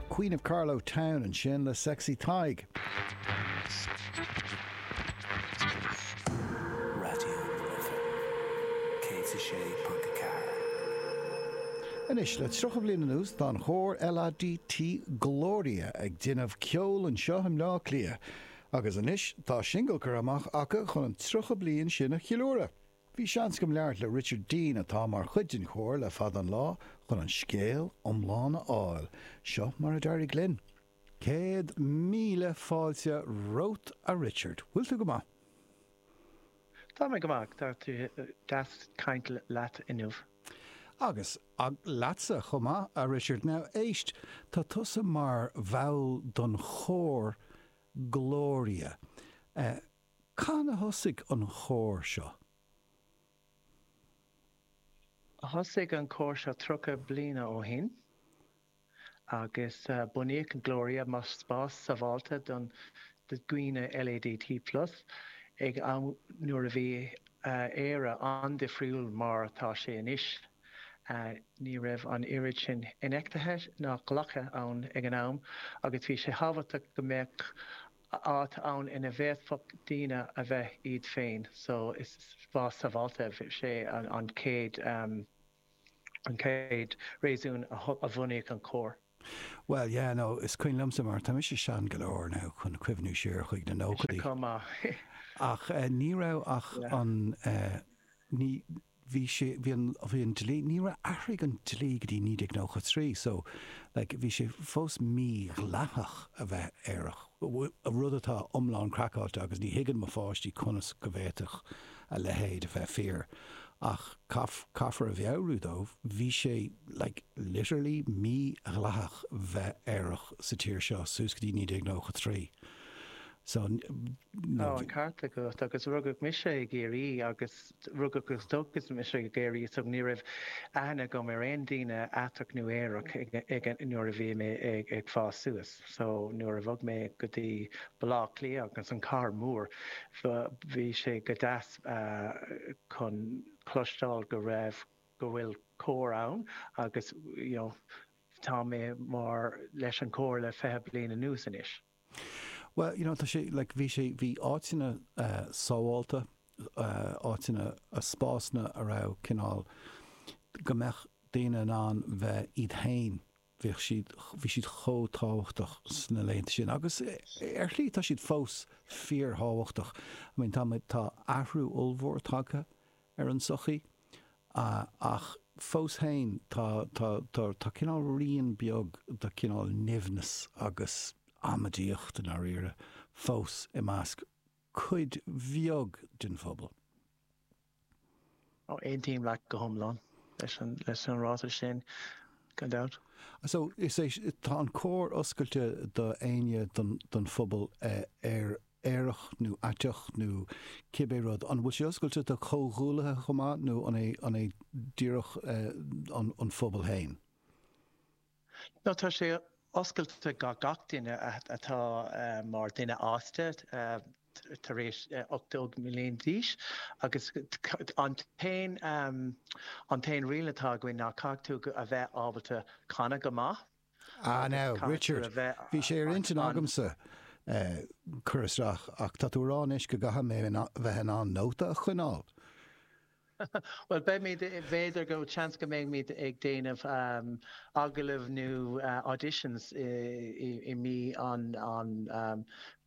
Queen of Carlow Town ansin le Sexy Tadhg. Raidió na Life 106.4. Anois, le 30 bliain anuas, tá an chór LADT Gloria ag déanamh ceoil anseo i mBleá Cliath agus anois tá singil curtha amach acu chun an 30 bliain sin a cheiliúradh. Bhí seans agam labhairt le Richard Dean, atá mar chuid den chór le fada an lá, chun an scéal iomlán a fháil. Seo mar a d'éirigh linn. Céad míle fáilte romhat, a Richard. Bhfuil tú go maith? Tá mé go maith. Tá sé deas caint leat inniu. Agus leatsa chomh maith, a Richard. Now, éist, tá tusa mar bhall den chór Glória. Eh. Cathain a thosaigh an chór seo? Thosaigh an cór seo tríocha bliana ó shin agus bunaíodh Gloria mar spás sábháilte don do dhaoine LADT plus ag an am nuair a bhí Éire an-difriúil mar atá sé anois. Ní raibh an oiread sin infheicthe ná glactha ann ag an am agus bhí sé thábhachtach go mbeadh áit ann ina bhféadfadh daoine a bheith iad féin so is spás sábháilte a bhí sé an chéad an chéad réasún a bhunaíodh an chór. Bhuel, yeah, no, is cuimhin liomsa mar tá mise sean go leor now chun cuimhniú siar chuig na nóchaidí. Mise chomh maith. Ach ní raibh ach an ní. bhí sé, bhí an, bhí an dlí, ní raibh, athraigh an dlí go dtí 1993 so like bhí sé fós mídhleathach a bheith aerach, rud atá iomlán craiceáilte agus ní thuigeann mo pháistí conas go bhféadfadh a leithéid a bheith fíor ach caithfear a mheabhrú dóibh, bhí sé like literally mídhleathach bheith aerach sa tír seo suas go dtí 1993 so, you know, bhí. Tá an ceart agat agus rugadh mise i gCiarraí agus. Rugadh agus tógadh mise i gCiarraí so. Ní raibh aithne agam ar aon daoine aiteach nó aerach nuair a bhí mé ag fás suas. So nuair a bhog mé go dtí Baile Átha Cliath san cathair mhór, bhí sé go deas chun cloisteáil go raibh, go bhfuil cór ann agus, you know, tá mé mar, leis an chór le fiche bliain anuas anois. Bhuel, you know, tá sé, like, bhí sé, bhí áiteanna sábháilte, áiteanna, spásanna a raibh cineál, go mbeadh daoine in ann bheith iad féin, bhí, bhí siad chomh tábhachtach sna laethanta sin agus ar shlí tá siad fós fíorthábhachtach. I mean, tá muid, tá athrú ollmhór tagtha ar an tsochaí ach fós féin tá cineál rian beag de chineál nimhneas agus amaidíocht, i ndáiríre, fós i measc cuid bheag den phobal. Aontaím leat go hiomlán leis an ráiteas sin, gan dabht. So, is é, tá an cór oscailte d'éinne den phobal ar. aerach nó aiteach nó cibé rud. An bhfuil sé oscailte do chomhghuaillithe chomh maith nó an é díreach an phobal féin? Nó tá sé oscailte do gach duine atá mar dhuine fásta tar éis 18 bliain d'aois agus an t-aon riail atá againn ná caithfidh tú a bheith ábalta canadh go maith. Ah now, Richard, bhí sé ar intinn agamsa cur isteach ach tá tú ag rá anois go gcaithfidh mé bheith in ann nóta a choinneáil. Bhuel, beimid, b'fhéidir go seans go mbeimid ag déanamh agallaimh nó auditions i mí an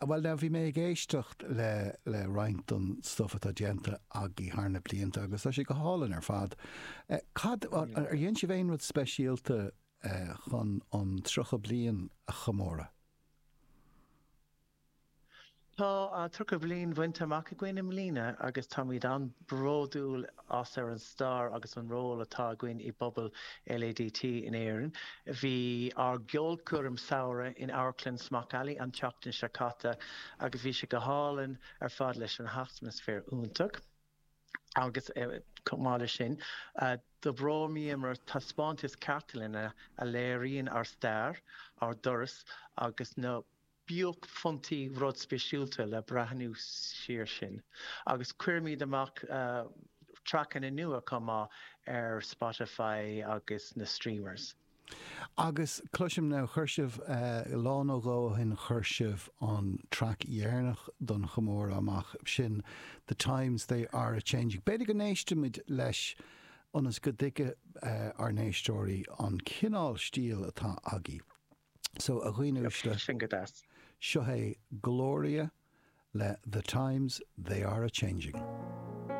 A, bhuel, now, bhí mé ag éisteacht le, le roinnt den stuff atá déanta agaibh thar na blianta agus tá sé go hálainn ar fad. Eh, cad, ar dhein sibh aon rud speisialta eh, chun an 30 bliain a chomóradh? Tá uh, tríocha bliain bainte amach againn i mbliana agus táimid an-bhródúil as an stair agus an ról atá againn i bpobal LADT in Éirinn. Bhí ár gceolchoirm samhraidh in Amharclann Smock Alley an tseachtain seo caite agus bhí sé go hálainn ar fad leis an atmaisféar iontach agus chomh maith leis sin d'oibríomar ar thaispeántas cartlainne a léiríonn ár stair, ár dturas agus na. buaicphointí rud speisialta le breathnú siar sin agus chuireamar amach traiceanna nua chomh maith ar Spotify agus na streamers. Agus cloisim now, chuir sibh, lá nó dhó ó shin chuir sibh an traic dheireanach den chomóradh amach, sin The Times They Are A Changing. B'fhéidir go n-éistfimid leis ionas go dtuigfidh ár n-éisteoirí an cineál stíl atá agaibh. So, a dhaoine uaisle, seo é Glória le The Times They Are A Changing.